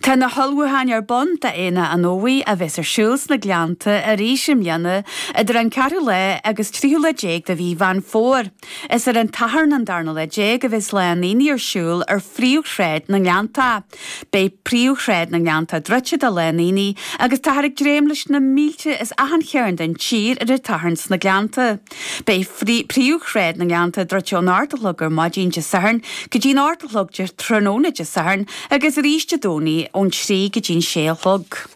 Tá na hullmhúcháin ar bun d'Aonach an Fhómhair a bheas ar siúl sna Gleannta arís i mbliana idir an ceathrú lá agus tríú lá déag de mhí Mheán Fómhair. Is ar an tSatharn an darna lá déag a bheas Lá an Aonaigh ar siúl ar phríomhshráid na nGleannta. Beidh príomhshráid na nGleannta druidte do Lá an Aonaigh agus táthar ag dréim leis na mílte as achan chearn den tír ar an tSatharn sna Gleannta. Beidh príomhshráid na nGleannta druidte ón ocht a chlog ar maidin Dé Sathairn go dtí'n ocht a chlog de thráthnóna Dé Sathairn agus arís Dé Domhnaigh ón trí go dtí'n sé a chlog.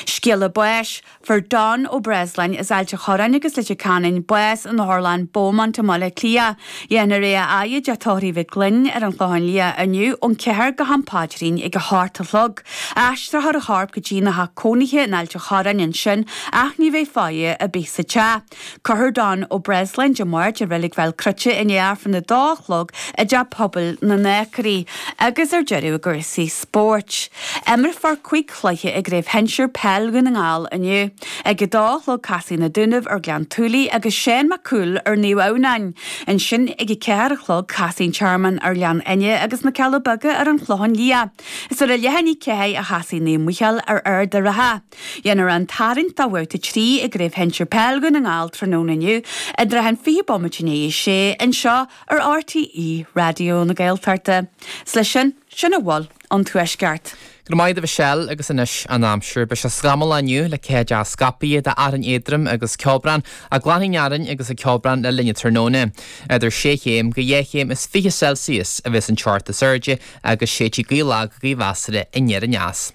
Scéala báis, Fuair Don Ó Breasláin as Ailt a Chorráin agus Leitir Ceanainn bás in otharlann Beaumont i mBaile Átha Cliath. Déanfar é a fhaire i dTeach Tórraimh Mhic Gloinn ar an Chlochán Liath inniu ón ceathair go ham paidrín ag a hocht a chlog. Aistreofar a chorp go dtína theach cónaithe in Ailt a Chorráin ansin ach ní bheidh faire ar bith sa teach. Cuirfear Don Ó Breasláin Dé Máirt i Reilig Bhéal Cruite i ndiaidh Aifreann a 2 a chlog i dTeach Pobail na nAcraí agus ar deireadh i gcúrsaí spóirt. Imreofar cúig chluiche i gCraobh Shinsir Peil Dhún na nGall inniu. Ag a dó a chlog casfaidh Na Dúnaibh ar Ghleann tSúilí agus Seán Mac Cumhaill ar Naomh Adhamhnáin. Ansin ag a ceathair a chlog casfaidh An Tearmann ar Ghleann Fhinne agus Na Cealla Beaga ar an Chlochán Liath. Is ar a leath i ndiaidh a ceathair a chasfaidh Naomh Micheál ar Ard a' Rátha. Déanfar an tarraingt do Bhabhta 3 i gCraobh Shinsir Peil Dhún na nGall tráthnóna inniu i dtrátha an 20 bomaite i ndiaidh a sé anseo ar RTÉ Raidió na Gaeltachta. Is leis sin, sin a bhfuil ón Tuaisceart. Go raibh maith agat Mhichelle agus anois an aimsir. Beidh sé scamallach inniu le ceathaideacha scaipthe d'fhearthainn éadrom agus ceobhrán, ach glanfaidh an fhearthainn agus an ceobhrán le linn an tráthnóna. Idir sé chéim go dhá chéim is fiche Celsius a bheas an teocht is airde agus séidfidh gaoth lag go measartha anoir aneas.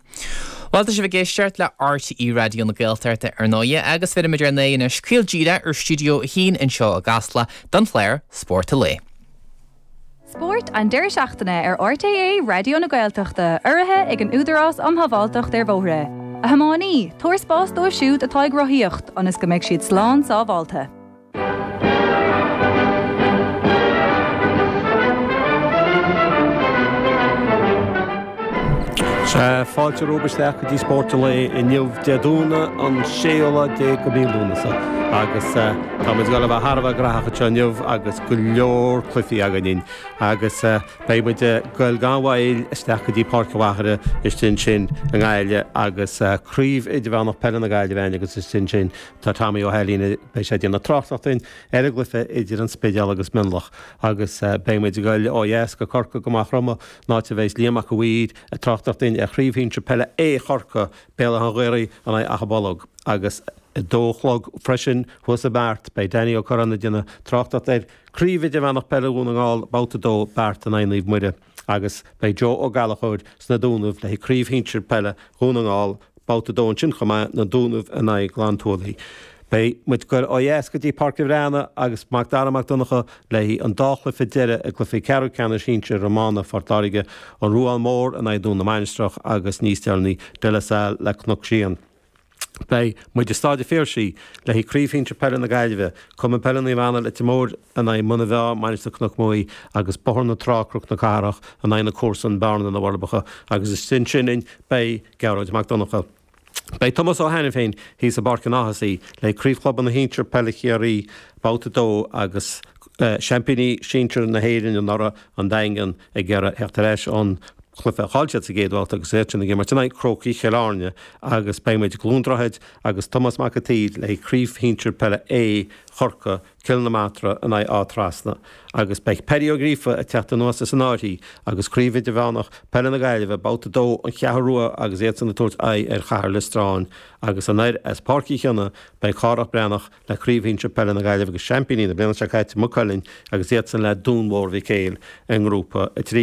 Bhuel, tá sibh ag éisteacht le RTÉ Raidió na Gaeltachta, ar ndóighe, agus bheirimid ár n-aghaidh anois caol díreach ar Stiúideo 1 anseo i gCasla don chlár Spórt an Lae. Spórt an deireadh seachtaine ar RTÉ Raidió na Gaeltachta, urraithe ag an Údarás um Shábháilteacht ar Bhóithre. A thiománaí, tabhair spás dóibh siúd atá ag rothaíocht ionas go mbeidh siad slán sábháilte. Fáilte romhaibh isteach go dtí Spórt an Lae inniu, Dé Domhnaigh an 16ú mí Lúnasa, agus tá muid ag goil a bheith thar a bheith graitheach anseo inniu agus go leor cluichí againn. Agus beidh muid ag goil gan mhoill isteach go dtí Páirc an Mhachaire istigh ansin i nGaillimh agus Craobh Idirmheánach Peile na Gaillimhe againn agus istigh ansin Tá Tommy Ó hAilín, beidh sé ag déanamh tráchtaireacht dúinn ar an gcluiche idir an Spidéal agus Mionlach agus beidh muid ag goil ó dheas go Corcaigh go Maigh Chromtha an áit a bheidh Liam Mac a' Mhaoir ag tráchtaireacht dúinn ar Chraobh Shinsear Peile A Chorcaí Béal Átha an Ghaorthaidh in aghaidh Achadh Bolg agus a dó a chlog freisin thuas i mBeart beidh Danny Ó Curráin ag déanamh tráchtaireacht ar Chraobh Idirmheánach Peile Dhún na nGall, Babhta 2, Beart in aghaidh Naomh Muire. agus beidh Joe Ó Gallachóir sna Dúnaibh le haghaidh Craobh Shinsir Peile Dhún na nGall, Babhta 2 ansin chomh maith, na Dúnaibh in aghaidh Gleann tSúilí. Beidh muid goil ó dheas go dtí Páirc a' Bhreathnaigh agus Macdara Mac Donncha le haghaidh an dá chluiche deireadh i gcluichí ceathrú ceannais shinsir iomána Phort Láirge, An Ruán Mór in aghaidh Dún na Mainistreach agus níos deireanaí, De La Salle le Cnoc Síon. Beidh muid i Stáid a' Phiarsaigh, le haghaidh Craobh Shinsir Peile na Gaillimhe, Cumann Peile Naomh Anna Leitir Móir in aghaidh Muna Bheá, Mainistir Cnoc Maí agus Bóthar na Trá, Croc na Cathrach in aghaidh na comharsan Bearna na Forbacha agus istigh ansin againn beidh Gearóid Mac Donncha. Beidh Tomás Ó hAiniféin thíos i bPáirc an Ághasaigh, le haghaidh Craobh Chlubanna Shinsir Peile Chiarraí, Babhta 2 agus seaimpíní sinsir na hÉireann anuraidh, an Daingean, ag iarraidh a theacht ar ais ón gcluiche a chaill siad sa gcéad bhabhta agus iad sin ag imirt in aghaidh Chrócaigh Chill Airne agus beidh muid, i gCluain Droichead agus Tomás Mac a tSaoir, le haghaidh craobh shinsir peile A, Chorcaí, Cill na Martra in aghaidh Áth Trasna agus beidh Paddy Ó Gríofa ag teacht anuas as an Áth Buí agus Craobh Idirmheánach Peile na Gaillimhe, Babhta 2, An Cheathrú Rua agus iadsan ag tabhairt aghaidh ar Chathair Liostráin agus anoir as Páirc Uí Chionnaith beidh Cárthach Bán Breathnach le Craobh Shinsir Peile na Gaillimhe agus Seaimpíní na bliana seo caite, Maigh Cuilinn, agus iadsan le Dún Mór Mhic Éil i nGrúpa 3.